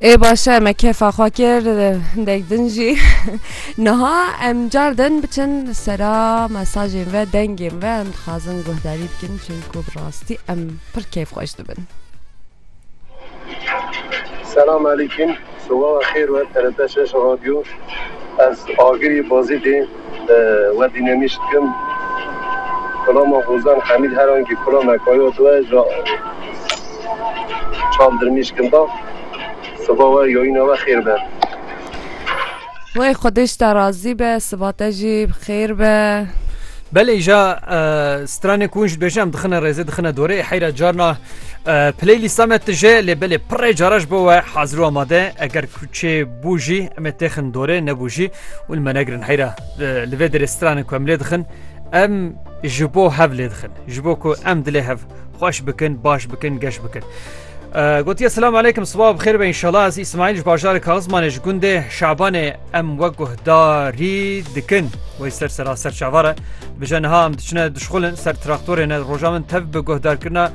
Ê başe me kêfa xwe kir hindek din jî niha em car din biçin sera mesajên ve dengên ve em dixwazin guhdarî bikin çunku bi rastî em pir kêf xweş dibin. Selam alîkim, sobaxa xêr we TRT şeş radyo ez agirî Bazidê Werdî nemîş dikim. Kulama Hozan Hemîd her angî kula me kayo diwe ja çav dirmîş kin da. Siba we yoyîna we xêr be. Wey xwedê ji te razî be, siba te jî bi xêr be. Belê ja stranê ku hûn ji dibêjin em dixine rêzê dixine dorê heyra carna playlîsta me tije lê belê pirê cara ji bo we hazir û amade eger Çê bû jî em ê têxin dorê nebû jî û li me negirin heyra li vê derê stranên ku em lê dixin em ji bo hev lê dixin ji bo ku em dilê hev xweş bikin baş bikin geş bikin. Gotiye selam aleykum siba bi xêr be inşallah ez İsmail ji bajarê Kazmanê ji gundê Şabanê em we guhdarî dikin wê ser sera serçavare bije niha em diçine dişxulin ser traktorê ne roja min tev bi guhdarkirina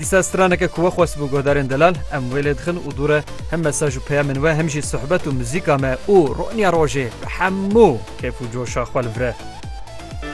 Dîsa straneke ku we xwest bû guhdarên delal em wê lê dixin û dûre hem mesaj û peyamên we hem jî sohbet û muzîka me û roniya rojê bi hemû kêf û coşa xwe li vir e.